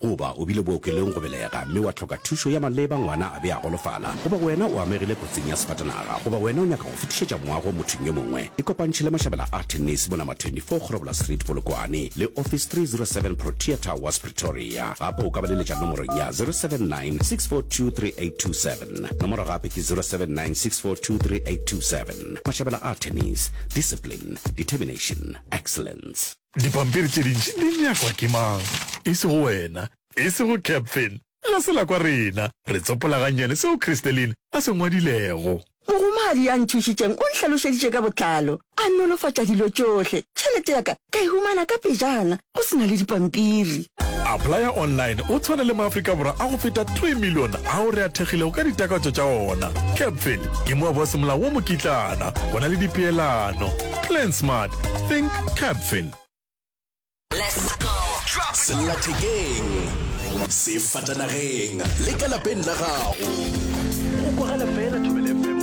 Goba o bile bookelong go belega mme wa hloka thušo ya maleba, ngwana a be a golofala, goba wena o amegile kotsing ya sefatanaga, goba wena o nyaka go fetišetša moago mothong yo mongwe, ikopantšhe le mašabela a Tennis, bo Number 24 Kgorobola Street, Polokwane, le Office 307 Protea Towers, Pretoria. Gape o ka ba leletša nomorong ya 079 642 3827. Nomoro gape ke 079 642 3827. Mašabela a Tennis, Discipline, Determination, Excellence. Dipampiri tše dintši di nyakwa ke mang? E sego wena. E sego Captain. Ga se la kwa rena. Re tsopola gannyane seo Christeline a se ngwadilego. Mogomadi ya nthušitšeng o nhlalošeditše ka botlalo. A nolofatša dilo tšohle. Tšhelete ya ka ka e humana ka pejana, go se na le dipampiri. Applya online o tshwane le Maafrika Borwa a go feta three million ao re a thekgilego ka ditakatso tša ona. Captain ke moaboasemolao wo mokitlana. Go na le dipeelano. Plan smart. Think Capfin. sellathekeng sefatanageng le ka lapeng la gago go kwagala fela thobelefm